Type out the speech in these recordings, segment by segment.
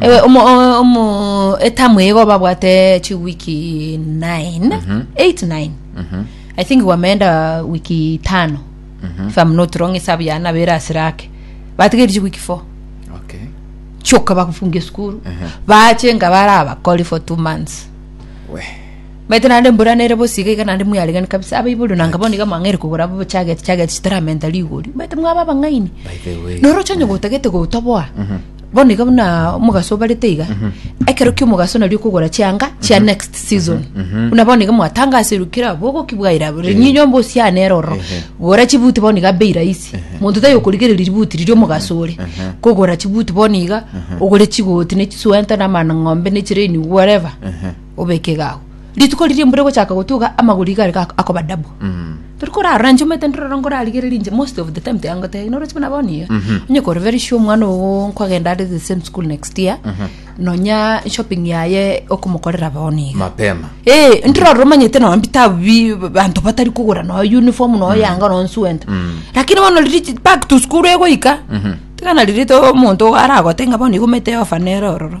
Ewe omo o- omo etamu igo babwate chi wiki 9 8 9 i think gwameenda wiki tano if i'm not wrong esabu ya nabere asirake batigeri chi wiki 4 okay choka bakufunga esukuru bache nga bare abakori for 2 months we maite nande mbura nere bosiga iga nande mwiaregani kabisa abaibori nanga bono iga mwang'eri kogora bo chageti chageti chitaramenta rigori maite mwaba abang'aini by the way noroche onye gotagete gotoboa Bono iga buna omogaso obarete iga, ekero ki'omogaso nario okogora chianga chia next season. Buna bono iga mwatangaserwe kera abogo ki bwaira abo, rinyinyi nyomba osiane ere ororo, gora chibuti bono iga bei rahisi. Monto taiyo okorigereria ributi riria omogaso ore, kogora chibuti bono iga, ogore chigoti na chisweater na amang'ombe na chiraini whatever, obeke iga abwo. Rituko riria embura egochaka gotuga amagoro iga are ga- akoba dabu tori korarora inche omanyete ndororo nkorarigereria inche most of the time tiangotebi noroche buna bono iga onye kore very sure omwana ogo nkogenda are the same school next year nonya shopping yaye okomokorera bono iga mapema Eh, ntororo omanyete nonya bitabu bi banto batari kogora nonya uniform nonya yanga nonya suenta lakini bono riria back to school egoika tiga nari rete omonto aragote ng'a bono iga omanyete eofa nere ororo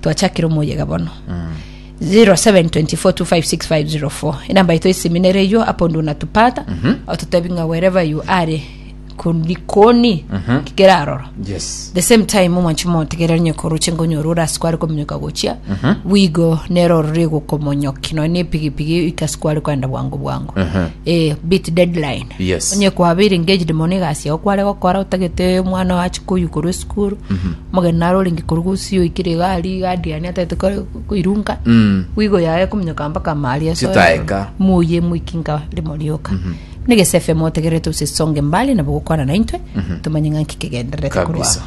twachakire omoyega bono 0724256504 enamba yaito esiminere eyo apo ndu natupata ototebi ng'a wherever you are kundi koni kikera aroro yes the same time omwanchi motegerera onye koroche ngonyora ore ase kware kominyoka gochia bwigo nero orore gokomonyoki nonya na epigipigi ika ase kware kwenda bwango bwango eh, beat deadline Yes. onye kwabeire engaged mono egasi yao kware gokora otagete omwana oye ache koyukorwa esukuru Omogeni are orenge korwa gusii oikire iga aria iga adiani atagete kore koirunka Mm. bwigo yaye kominyoka mpaka amari asoe Chitaeka. moye moiki nka rimo rioka ne gesefe motegerere tose songe mbali nabo gokwana naintwe tomanye ng'a nki kegendererete korwa Kabisa.